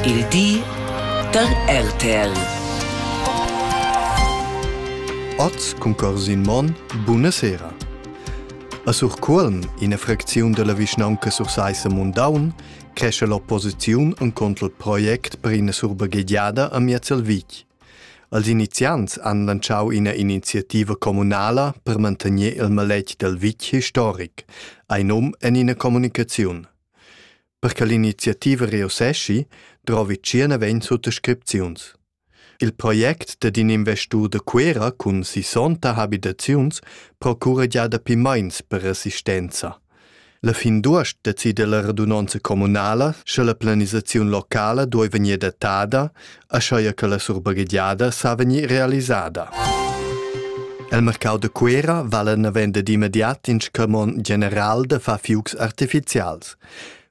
Il di da RTL. Oz cumprar sin mon buna sera. A Surcuolm, ina fracziun della vischnaunca Sursaissa Mundaun, cresce l'opposiziun en contro il project per ina surbagheggiada a Miazel Vic. Als iniziants han lanciau ina iniziativa communala per mantenere il maletg del Vic historic, ein um en ina communicaziun. Per che l'iniziativa reusseschi, drovi tschierneven suttascripziuns. Il project dad in investur da Cuera cun sissonta habitaziuns procura gia dapi meins per assistenza. La fin d'uost decide la radunanza communala sche la planisaziun locala duoi vegnir datada ascheia che la surbaghegiada sa vegnir realisada. El mercau de Cuera vale navend ed immediat in scamon general de fa fiugs artificials.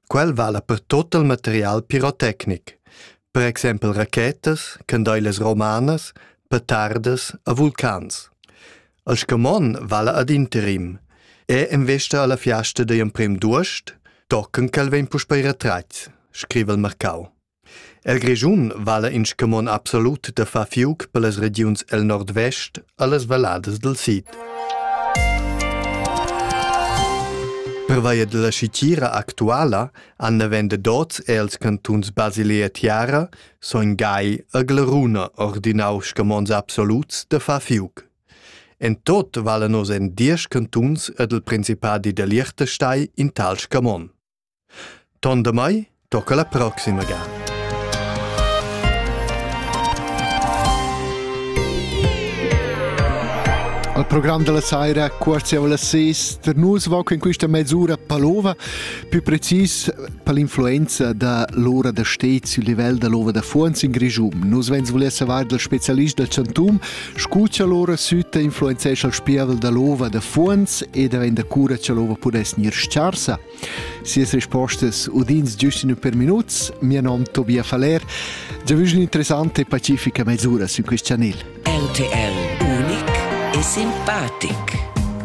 Quel vale per tot il material pirotecnic, per exempel rachetas, candeiles romanas, petardas a vulcans. El scamon vale ad interim e investa alla fiasta de emprim d'uost, tocken quel vegn puspei retratgs, scrive il mercau. El Grischun vala in scumon absolut da far fiuc per las regiuns el nordvest allas valladas dal sid. Pervia della scitira actuala han navende dots els cantuns Basilea Tiara, Son Gai e Glaruna ordinau scamons absoluts da far fiuc. En tot valan nos en diesch cantuns ed il principadi da Liechtenstein in tal scamon. Ton damai tocca la proxima ga. Al program della saira quartiavo la ses per nus voc in questa mezz'ura palova, più precis per l'influenza da l'ora da stez il livello dell'ova da Fuons in Grigium. Nus vens voler savar del specialist del Chantum, scucha l'ora sütta influenzescha il spiavel dell'ova da Fuons e da venda cura che l'ova pudess gnir scarsa. Sias rispostas udins giust ün per minuts. Mia nom Tobia Faller. Già vus interessante e pacifica mesura su quest chanel. RTL unic e simpatic.